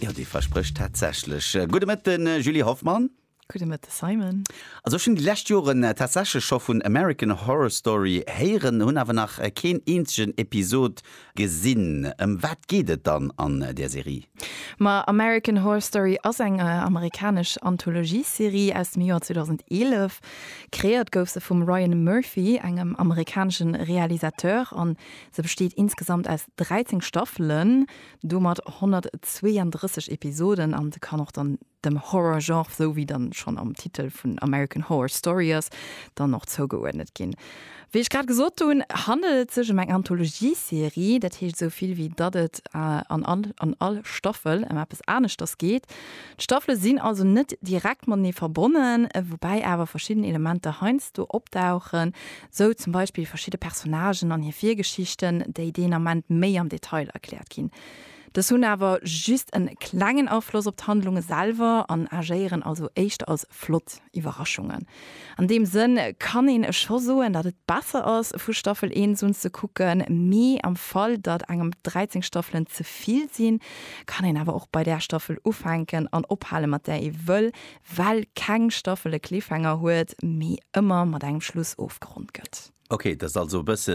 Jo, dee versprécht tatsächlech. Gudde Mëtte Julie Hoffmann. Gudde Mëtte Simon. Also ech hunn déi lescht Joren tatsächlech scho vun American Horror Story héieren, hunn awer nach keen eenzegen Episod gesinn. Ëm wat geet et dann an där Serie? Ma American Horror Story ass eng amerikanesch Anthologie-Serie aus dem Joer 2011. Kreéiert gouf se vum Ryan Murphy, engem amerikanesche Realisateur an Se besteet insgesamt aus 13 Staffelen, domat 132 Episoden an se kann och dann dem Horror-Genre, sou wéi dann schonn am Titel vun American Horror Story ass, dann och zougeuerdnet ginn. Wéi ech grad gesot hunn, handelt et sech em eng Anthologie-Serie, dat heescht esou vill wéi datt et an all an all Staffel em eppes aneschters geet. D'Staffele sinn also net direkt matenee verbonnen, woubäi awer verschidden Elementer heiansdo opdauchen, Sou zum Beispill verschidde Personnagen an hir Virgeschichten, déi deen Ament méi am Detail erkläert ginn. Dës hunn awer just en klengen Afloss op d'Handlunge selwer an agéieren also éischter als flott Iwwerraschungen. An deem Sënn kann een scho soen, datt et besser ass, vu Staffel 1 un ze kucken, mee am Fall, datt engem dräizéng Staffelen ze vill sinn, kann een awer och bei där Staffel ufänken an ophale mat där ee wëll, well keng Staffel e Cliffhanger huet, mee ëmmer mat engem Schluss ofgeronnt gëtt. Ok, dat ass also e bësse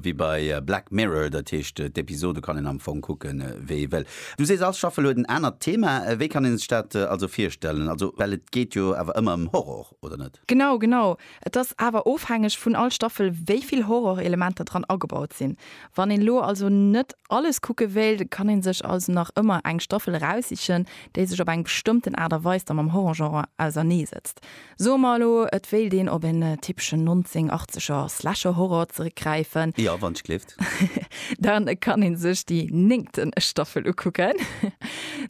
wéi bei Black Mirror, dat heescht d'Episode kann een am Fong kucke wéi ee wëll. Du sees all Staffel huet en anert Thema, wéi kann ee sech dat also virstellen? Also well et geet jo awer ëmmer ëm Horror, oder net? Genau, genau. Et ass awer ofhängeg vun all Staffel wéi vill Horrorelementer dran agebaut sinn. Wann een elo also net alles kucke wéilt, kann een sech also nach ëmmer eng Staffel eraussichen, déi sech op eng bestëmmten Aart a Weis da mam Horrorgenre ausernee setzt. Soe mer elo, et wéilt een op en typeschen 1980er Slasher-Horror zeréckgräifen. Jo, wann ech gleef. Lëscht. Dann kann een sech déi néngten Staffel ukucken.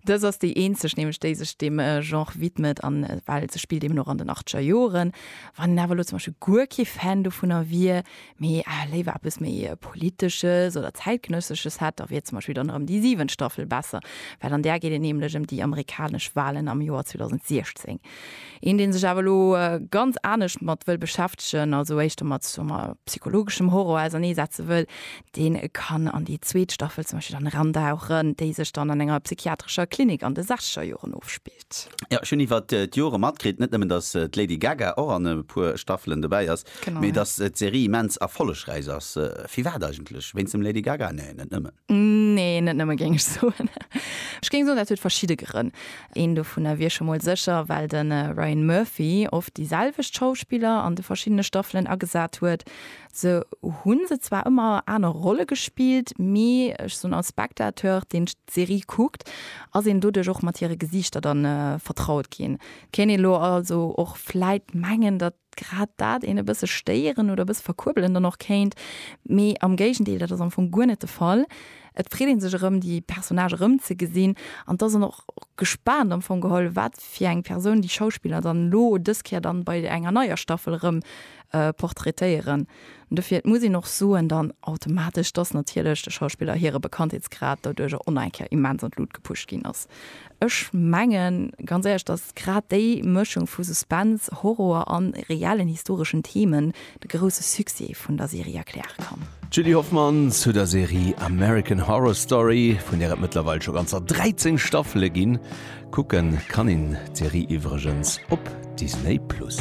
Dës ass déi eenzeg nämlech, déi sech deem Genre widmet an well se spillt eben och an den achteger Joren. Wann een awer elo zum Beispill guer kee Fan dovunner wier, mee léiwer eppes méi Politesches oder Zäitgenëssesches hätt, da wier zum Beispill dann erëm déi siwent Staffel besser, well an där geet et nämlech ëm déi amerikanesch Walen am Joer 2016. Een deen sech awer elo ganz anescht mat wëll beschäftegen, also éischter mat soe mer psychologeschem Horror ausernee setze wëll, deen kann an déi zweet Staffel zum Beispill dann erandauchen, déi sech dann an enger psychiatrescher Klinik an de sechzeger Joren ofspillt. Jo, ech hunn iwwer d'Jore matkritt, net nëmmen datt d'Lady Gaga och an e puer Staffelen dobäi ass, mee datt d'Serie immens erfollegräich ass. Firwat eigentlech? Wéinst dem Lady Gaga? Nee, net nëmmen. Nee, net nëmme géing ech soen. Ech géing soen, dat huet verschidde Grënn. Een dovunner wier scho mol sécher, well de Ryan Murphy oft déi selwecht Schauspiller an de verschiddene Staffelen agesat huet. Se hu se zwar ëmmer aner Rolle gespillt, mee ech soen, als Spectateur, deen d'Serie kuckt, ass een doduerch och mat hire Gesiichter dann vertraut ginn. Kéint ee lo also och vläit mengen, datt grad dat een e bësse stéieren oder e bësse verkuerbelen dann och kéint, mee am Géigendeel, dat ass am Fong guer net de Fall. Et freet ee sech erëm, déi Personnage erëmzegesinn an et ass een och gespaant am Fong geholl, wat fir eng Persoun déi Schauspiller dann elo dës Kéier dann bei enger neier Staffel erëm portraitéieren. Dofir, et muss een och soen dann automatesch, dass natierlech de Schauspiller hire Bekanntheetsgrad doduerjer och nach eng Kéier immens an d'Lut gepusht ginn ass. Ech mengen ganz éierlech, dass grad déi Mëschung vu Suspense, Horror a reellen historeschen Themen de grousse Succès vun der Serie erkläre kann. D'Julie Hoffmann zu der Serie American Horror Story, vun där et mëttlerweil scho ganzer 13 Staffele ginn. Kucke kann een d'Serie iwwregens op Disney Plus.